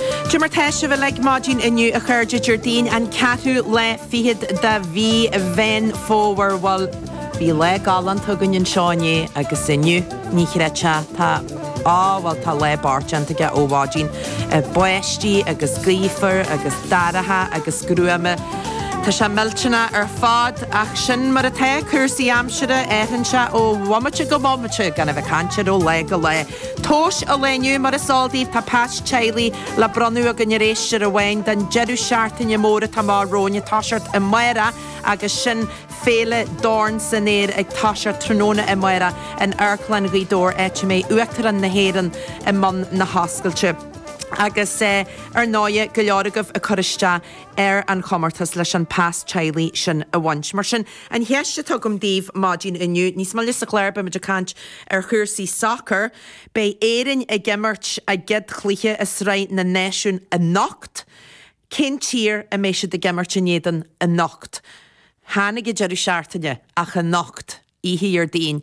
Cad é mar atá sibh uilig maidin inniu a chairde Déardaoin an ceathrú lá fichead de mhí Mheán Fómhair. Bhuel, bhí lá galánta againn anseo inné agus inniu, ní chreidfeá, tá, á bhuel tá lá bliain déanta aige ó mhaidin. Báistí agus gaofar agus dorcha agus gruama. Tá sé millteanach ar fad ach sin mar atá cúrsaí aimsire, athraíonn sé ó bhomaite go bomaite gan a bheith ag caint air ó lá go lá. Tomhas an lae inniu mar is eol daoibh tá pas teaghlaigh le bronnadh againn ar éisteoir amháin den deireadh seachtaine mór atá amach romhainn ag toiseacht amárach agus sin Féile Dorn san Aer ag toiseacht tráthnóna amárach in Amharclann Ghaoth Dobhair áit a mbeidh Uachtarán na hÉireann i mbun na hoscailte agus ar ndóigh go leor agaibh ag cur isteach ar an chomórtas leis an pas teaghlaigh sin a bhaint mar sin An cheist a tugaim daoibh maidin inniu, níos moille sa chláir beimid ag caint ar chúrsaí sacair, beidh Éirinn ag imirt a gcéad chluiche i Sraith na Náisiún anocht, cén tír a mbeidh siad ag imirt in éadan anocht? Chan ag an deireadh seachtaine, ach anocht, oíche Dhéardaoin,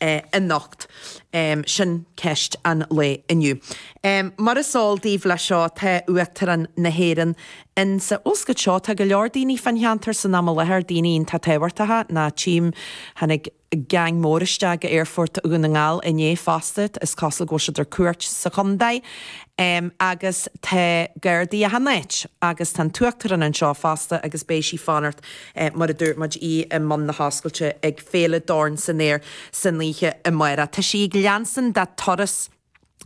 anocht? Sin ceist an lae inniu. Mar is eol daoibh leis seo tá Uachtarán na hÉireann in sa oscailt seo. Tá go leor daoine fán cheantar san am i láthair, daoine iontach tábhachtacha mar a tchím. Tháinig geaing mór isteach go aerfort Dhún na nGall inné fosta, is cosúil go bhfuil siad ar cuairt sa chontae. Agus tá Gardaí achan áit. Agus tá an tUachtarán anseo fosta agus beidh sí fán áit mar a dúirt muid, í i mbun na hoscailte ag. Féile Dorn san Aer san oíche amárach. Tá sí ag leanstan dá turas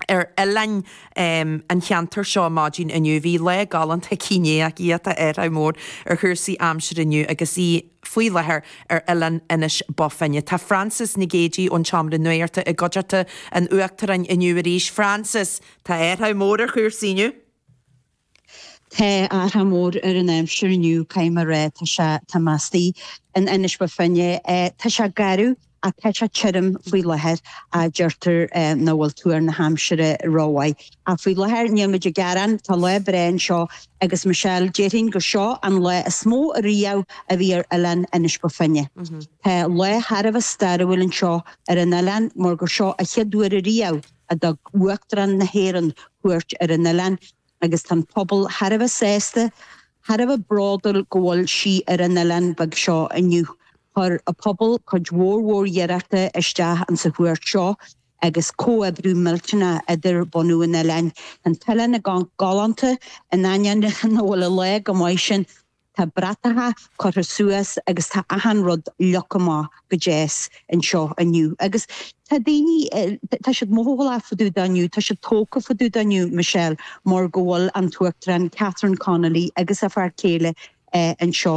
ar oileáin an cheantair seo maidin inniu. Bhí lá galánta aici inné ach í atá athrach mór ar chúrsaí aimsire inniu agus í faoi láthair ar oileán Inis Bó Finne. Tá Frances Nic Géadaigh ón tSeomra Nuachta i gcuideachta an Uachtaráin inniu arís. Frances, tá athrach mór ar chúrsaí inniu. Tá athrach mór ar an aimsir inniu, caithfidh mé rá. Tá sé, tá mé istigh in Inis Bó Finne, tá sé gaofar ach tá sé tirim faoi láthair ach deirtear nach bhfuil tuar na haimsire rómhaith. Ach faoi láthair níl muid ag gearán, tá lá breá anseo agus Michelle, déarfainn gur seo an lá is mó a riamh a bhí ar oileán Inis Bó Finne. Tá lá thar a bheith stairiúil anseo ar an oileán mar gur seo a chéad uair a riamh, a thug Uachtarán na hÉireann cuairt ar an oileán agus tá an pobal thar a bheith sásta, thar a bheith bródúil go bhfuil sí ar an oileán beag seo inniu. Chuir a pobal cuid mhór mhór iarrachta isteach in sa chuairt seo agus comhoibriú millteanach idir bunadh an oileáin. Tá an t-oileán i gcónaí galánta in ainneoin a bhfuil an lá go maith sin. Tá bratacha curtha suas agus tá achan rud leagtha amach go deas anseo inniu agus tá daoine, tá siad mothálach fá dtaobh de inniu, tá siad tógtha fá dtaobh de inniu, Michelle, mar go bhfuil an tUachtarán Catherine Connolly agus a fear céile anseo.